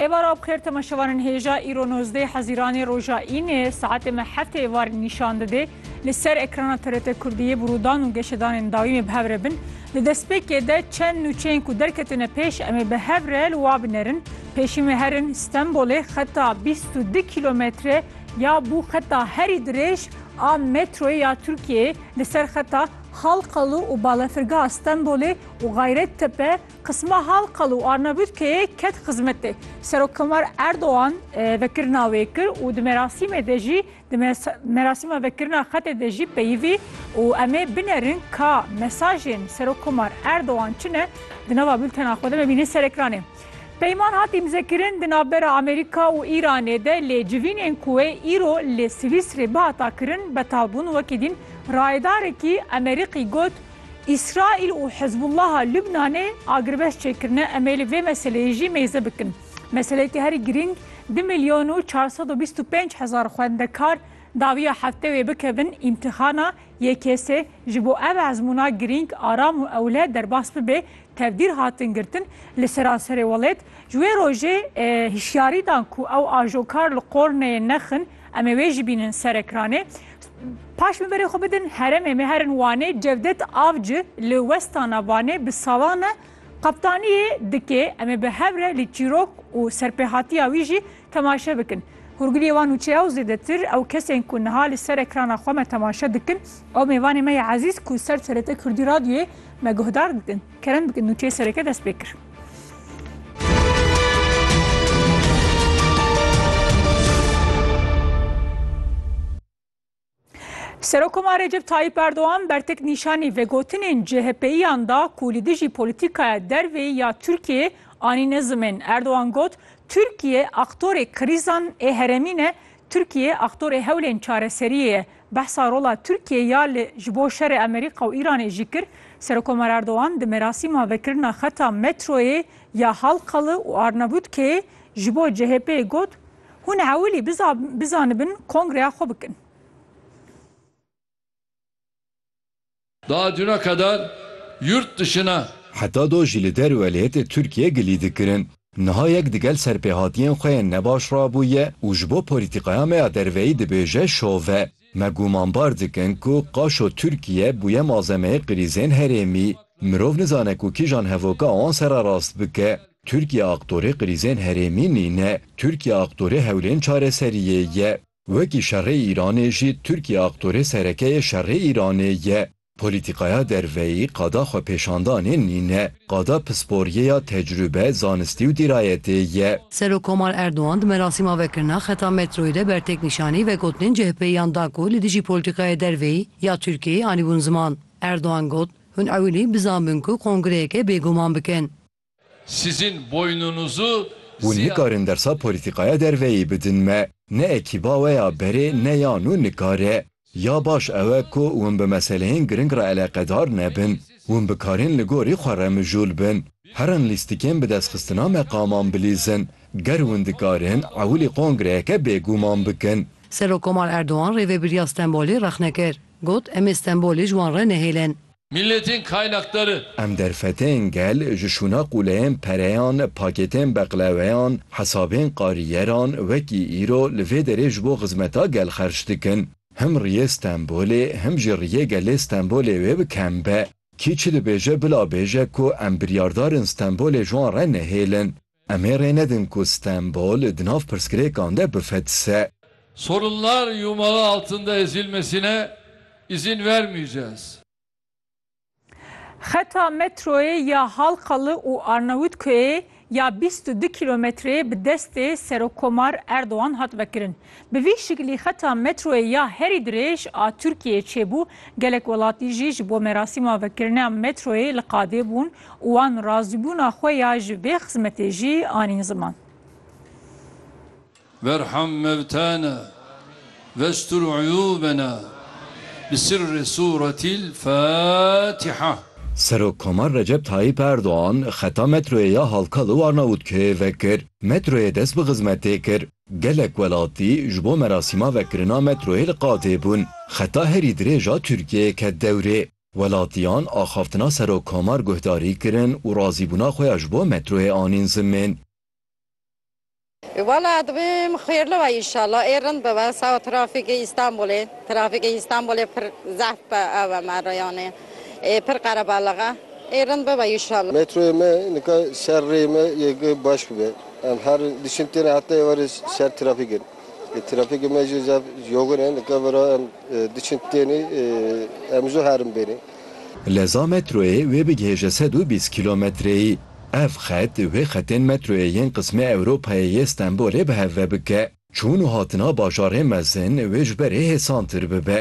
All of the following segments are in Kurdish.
Êvara bixêr temaşevanên hêja îro nozdeh Hezîranê roja Înê saetê me heft ê var nîşan didê. Li ser ekrana TRT Kurdiyê bi rûdan û geşedanên dawî me bi hev re bin. Di destpêkê de çend nûçeyên ku derketine pêş em ê bi hev re li wa binerin. Pêşî me herin Stenbolê xeta bîst û du kîlometre ya bû xeta herî dirêj a metroyê ya Tirkiyeyê li ser xeta Halkalı û Balafirgeha Stenbolê û Gayrettepe Qisma Halqal û Arnavutkeyê ket xizmetê. Serokkomar Erdogan vekirina wê kir û di merasîmê de jî di merasîma vekirina xetê de jî peyivî û em ê binerin ka mesajên Serokkomar Erdogan çi ne di nava bultena xwe de me bîne ser ekranê. Peyman hat îmzekirin di navbera Amerîka û Îranê de lê civînên ku wê îro li Swîsrê bihata kirin betal bûn wekî dîn rayedarekî Emerîqî got, Îsraîl û Hizbûllaha Lubnanê agirveşt çêkirine, em ê li vê meseleyê jî mêze bikin. Meseleyeke herî girîng du milyon û çar sed û bîst û pênc hezar xwendekar dawiya hefte wê bikevin îmtîxana YKS'ê. Ji bo ev ezmûna girîng, aram û ewle derbas bibe, tevdîr hatin girtin li seranserê welêt. Ji wê rojê hişyarî dan ku ew ajokar li qor neyên nexin, em ê wê jî bînin ser ekranê. Paş min berê xwe bidin heremê me herin Wanê Cevdet Avci li westana Vanê bi salan e qeptaniyê dike em ê bi hev re li çîrok û serpêhatiya wî jî temaşe bikin. Hûrgiliyê wan û çeya û zêdetir ew kesên ku niha li ser ekrana xwe me temaşe dikin ew mêvanê me ya ezîz ku ser TRT Kurdî Radyoyê me guhdar dikin. Kerem bi nûçeyê sereke dest pê kir. Serokoma Recep Tayyip Erdoğan bertek nîşanî vegotinên CHP'yan da ku li dijî polîtîkaya dervê ya Tirkiyeyê anîne zimên. Erdoğan got, Tirkiye aktorê krîzan ê heremî ne, Tirkiye aktorê hewlên çareseriyê ye. Behsa rola Tirkiye ya li ji bo şerê Amerîka û Îranê jî kir. Serokomer Erdogan di merasîma vekirina xeta metroyê ya Halkalı û Arnavutkeyê ji bo CHP'ê got, Hûn ewilî bizanibin kongreya xwe bikin. Da duna kadar yurt dışına. Heta do jî li der û elêtê Tirkiyê gilî dikirin. Niha yek di gel serpêhatiyên xwe yên nebaş re bûye û ji bo polîtîkaya me ya derveyî dibêje şove. Me gûmanbar dikin ku qaşo Tirkiye bûye malzemeyê krîzên herêmî. Mirov nizane ku kîjan hevoka wan ser re rast bike. Tirkiye aktorê krîzên herêmî nîne. Tirkiye aktorê hewlên çareseriyê ye. Wekî şerê Îranê jî Tirkiye aktorê serekeyê şerê Îranê ye. Polîtîkaya derveyî qada xwepêşandanê nîne, qada pisporiyê ya tecrûbe, zanistî û dîrayetê ye. Serokkomar Erdogan di merasîma vekirina xeta metroyê de ber têknîşanî vegotinên CHP'yiyan da ku li dijî polîtîkayê derveyî ya Tirkiyeyê anîbûn ziman. Erdogan got, Hûn ewilî bizanbûn ku kongreyeke bêguman bikin. Sizin boynunuzu. Hûn nikarin dersa polîtîkaya derveyî bidin me. Ne ekîba we ya berê ne ya nû nikare. Ya baş ew e ku hûn bi meseleyên giring re eleqedar nebin. Hûn bikarin li gorî xwe re mijûl bin. Herin lîstikên bi destxistina meqaman bilîzin. Ger hûn dikarin, ewilî kongreyeke bêguman bikin. Serokkomar Erdogan rêvebiriya Stenbolê rexne kir. Got, Em ê Stenbolê ji wan re nehêlin. Milletên kaynakdari. Em derfeteyên gel ji şûna qûleyên pereyan, pakêtên beqleweyan, hesabên qarîyeran wekî îro li vê derê ji bo xizmeta gel xerc dikin. Him riyê Stenbolê him jî riyê gelê Stenbolê wê bi kem be. Kî çi dibêje bila bêje ku em biryardar in Stenbolê ji wan re nehêlin. Em ê rê nedin ku Stenbol di nav pirsgirêkan de bifetise. Sorunlar yumağı altında ezilmesine izin vermeyeceğiz. Xeta metroyê ya Halkalı û Arnavutköyê ya bîst û du kîlometreyê bi destê Serokomar Erdogan hat vekirin. Bi vî şiklî xeta metroyê ya herî dirêj a Tirkiyeyê çêbû, gelek welatî jî ji bo merasîma vekirina metroyê li qadê bûn û wan razîbûna xwe ya ji vê xizmetê jî anîn ziman. Berham mevtena vestur uyûbena bi sirrê sûretîl Fatiha. Serokkomar Recep Tayyîp Erdogan xeta metroyê ya Halkalı Warnavutköye vekir. Metroyê dest bi xizmetê kir. Gelek welatî ji bo merasîma vekirina metroyê li qadê bûn. Xeta herî dirêj a Tirkiyeyê ket dewrê. Welatiyan axaftina Serok Komar guhdarî kirin û razîbûna xwe ya ji bo metroyê anîn zimin. Wela dibim xêrli be înşallah ê rind bibe sawa trafîkê Îstanbulê trafîkê Îstanbulê pir zehf be ew e me rêyanê ê pir qerebaliq e ê rind bibe înşallah. Metroyê me nika ser rê me yê baş bibe em her diçin têne heta êvarê ser trafîk in. Li trafîkê me jî zaf yoxin e. Li kevera em diçin tenê em zû herin benê. Leza metroyê wê bigihêje sed û bîst kîlometreyî. Ev xet wê xetên metroyê yên qismê Ewropayê yê Stenbolê bi hev ve bike. Çûn û hatina bajarên mezin wê ji berê hêsantir bibe.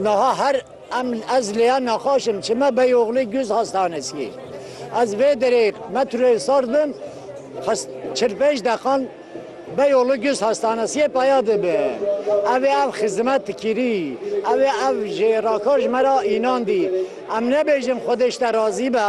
Niha her em ez lêya nexweş im, çime beyoxlê guz hastaneskî. Ez vê derê metroyê sar bim, xist çil pênc deqan beyoxlê guz hastaneskîyê peya dibim. Ev ê ev xizmet dikirî, ev ê ev ji rakar ji me re înandî. Em nebêjin xwedê ji te razî be,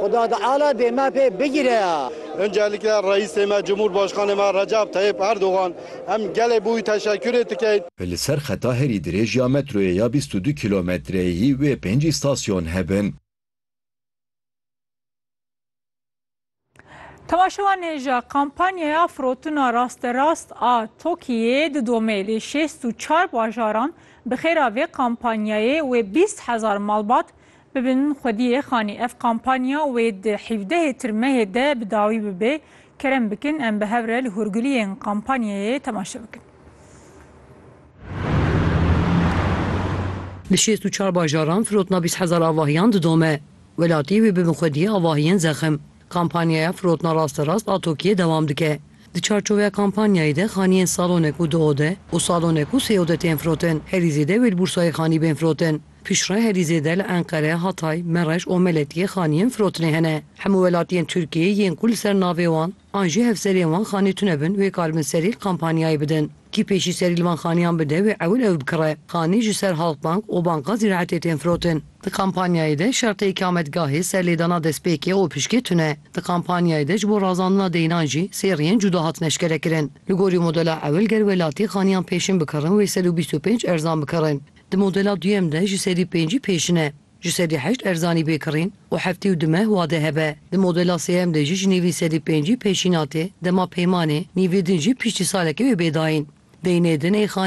xuda teala dê me pê bigire. Uncelikle Reîsê me, Cumhurbaşkanê me Recep Tayyip Erdogan, Em gelê bûy teşekkürê dikey. Li ser xeta herî dirêj ya metroyê ya bîst û du kîlometreyî wê pênc îstasyon hebin. Temaşevanê ji kampanyaya firotina rasterast a TOKİ'yê didomê li şêst û çar bajaran bi xêra vê kampanyayê wê bîst hezar malbat Bibin xwediyê xanî ev kampanya wê di hîvdehê tirmehê de bi dawî bibe. Kerem bikin em bi hev re li hûrguliyên kampanyayê temaşe bikin. Li şêst û çar bajaran firotina bîst hezar avahiyan didome. Welatî wê bibin xwediyê avahiyên zexim. Kampanyaya firotina rasterast a tokiyê dewam dike. Di çarçoveya kampanyayê de xaniyên salonek û du ode û salonek û sê ode tên firotin. Herî zêde wê li Bûrsayê xanî bên firotin. Piştre herî zêde li Enqere, Hatay, Mereş û Meletiyê xaniyên firotinê hene. Hemû welatiyên Tirkiyeyê yên ku li ser navê wan an jî hevserên wan xanê tune bin wê karibin serî kampanyayê bidin. Kî pêşî serî li van xaniyan bide wê ewil ew bikire. Xanî ji ser Halkbank û Banka Zîraetê tên firotin. Di kampanyayê de şertê îkametgahê, serlêdana destpêkê û piştgê tune. Di kampanyayê de ji bo razandina deyinan jî seriyên cuda hatin eşkerekirin. Li gorî modela ewil ger welatî xaniyan pêşin bikirin wê sed û bîst û pênc erzan bikirin. Di modela duyem de ji sedî pêncî pêşin e, ji sedî heşt erzanî bêkirîn û heftî û du meh wade hebe. Di modela sêyem de jî ji nîvî sedî pêncî pêşîn hatê, dema peymanê, nîvê din jî piştî salekê wê bê dayîn. Deynê din ê xanî.